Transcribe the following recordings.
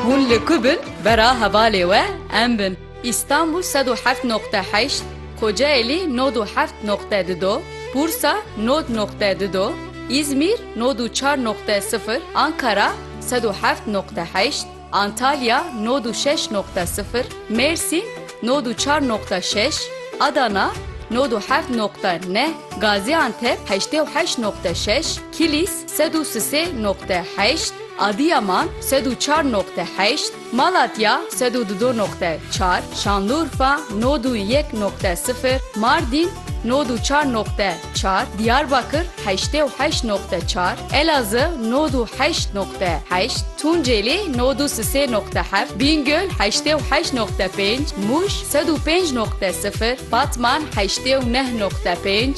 Hûn li ku bin bera hevalê we em bin. Îstanbûl sed û heft noqte heşt, Kocaelî nod û heft noqte di do, Bursa nod noqte di do, Îzmîr nod û çar noqte sifir, Ankara sed û heft noqte heşt, Antalya nod û şeş noqte sifir, Mêrsîn nod û çar noqte şeş, Adana nod û heft noqte neh, Gazîantep heştê û heşt noqte şeş, Kilîs Sed û sisê noqte heşt, Adiyaman, sed û çar noqte heşt, Malatya, sed û dido noqte çar, Şanlurfa, nod û yek noqte sifir, Mardîn, nod û çar noqte çar, Diyarbakir, heştê û heşt noqte çar, Elazığ, nod û heşt noqte heşt, Tunceli, nod û sisê noqte heft, Bîngöl, heştê û heşt noqte pênc, Mûş, sed û pênc noqte sifir, Batman, heştê û neh noqte pênc,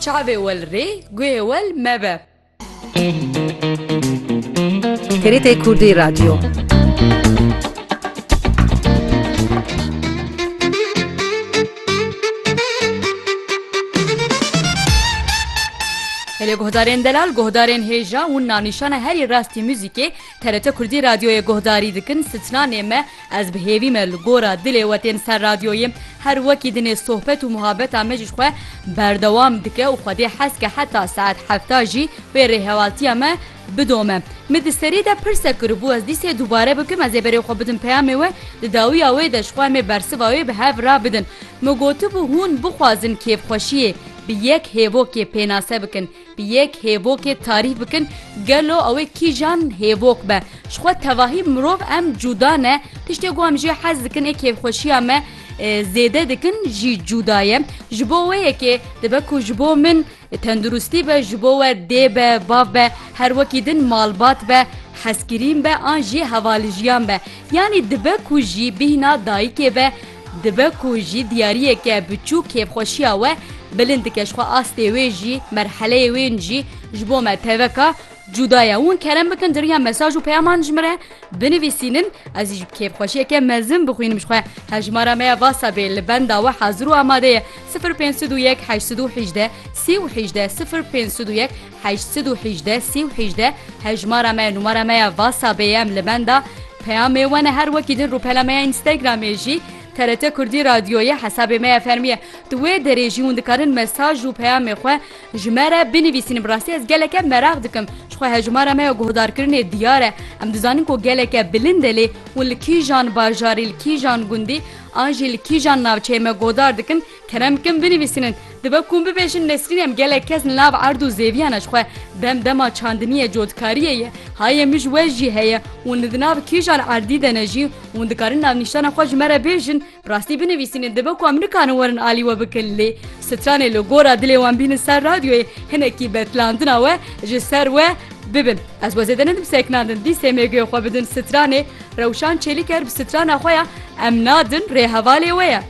Çavê wel rê, guhê wel mebe. TRT Kurdî Radyo Helê guhdarên delal, guhdarên hêja, winna nîşana herî rastî muzîkê, TRT Kurdî Radyoyê guhdarî dikin, sitnanê me, Ez bi hêvî me li gora dilê we tên ser radyoyê. Her wekî di nê sohbet û muhabeta me ji xwe berdewam dike û xwe dê hez ke heta saet hefta jî wê rêhevaltiya me bidome. Min di serê de pirsek kiribû ez dîsê dubare bikim ez ê berê xwe bidim peyamê we di dawiya wê de ji xwe em ê bersiva wê bi hev re bidin. Min gotibû hûn bixwazin kêfxweşiyê bi yek hêvokê pênase bikin. Bi yek hêvokê tarîf bikin gelo ew ê kîjan hêvok be. Ji xwe tevahî mirov em cuda ne, tiştê ku em jê hez dikin ê kêfxweşiya me zêde dikin jî cuda ye. Ji bo wê yekê dibe ku ji bo min tenduristî be ji bo we dê be, bav be, her wekî din malbat be, hezkirîn be an jî hevalijîyan be. Yanî dibe ku jî bîhna dayikê be, Dibe ku jî diyariyeke biçûk kêfxweşiya we bilind dike ji xwe astê wê jî merheleyê wên jî ji bo me teveka cuda ye. Hûn kerem bikin di riya mesaj û peyaman ji min re binivîsînin ez jî bi kêfxweşiyeke mezin bixwînim ji xwe. Hevjimara me ya WhatsApp ê li benda we hazir û amade ye sifir pênc sed û yek heşt sed û hejdeh sî û hejdeh sifir pênc sed û yek. heşt sed û hîjdeh sî û hîjdeh Hejmara me numara me ya WhatsAppê ye em li benda peyamê we ne her wekî din rûpela me ya Instagramê jî TRT Kurdî Radyo ye hesabê me ya fermî ye di wê derê jî hûn dikarin mesaj û peyamê xwe ji me re binivîsîn bi rastî ez geleke meraq dikim ji xwe hejmara me ya guhdarkirinê diyar e em dizanin ku geleke bilind e lê hûn li kîjan bajarî li kîjan gundî an jî li kîjan navçeyê me guhdar dikin Kerem kim binivîsînin, dibe ku hûn bibêjin Nesrîn em gelek kes li nav erd û zêviyana ji xwe dem dema çandiniyê cotkariyê ye, hayê min ji we jî heye, hûn li di nav kîjan erdî de ne jî, hûn dikarin navnîşana xwe ji me re bêjin, bi rastî binivîsînin dibe ku em nikarin werin alî we bikin lê stranê li gora dilê wan bînin ser radyoyê hinekî betlandina we ji ser we bibin. Ez we zêde nedim seknandin dî sêmêguyê xwe bidin stranê, Rewşan Çêlîker bi strana xwe ya Em nadin rê hevalê we ye.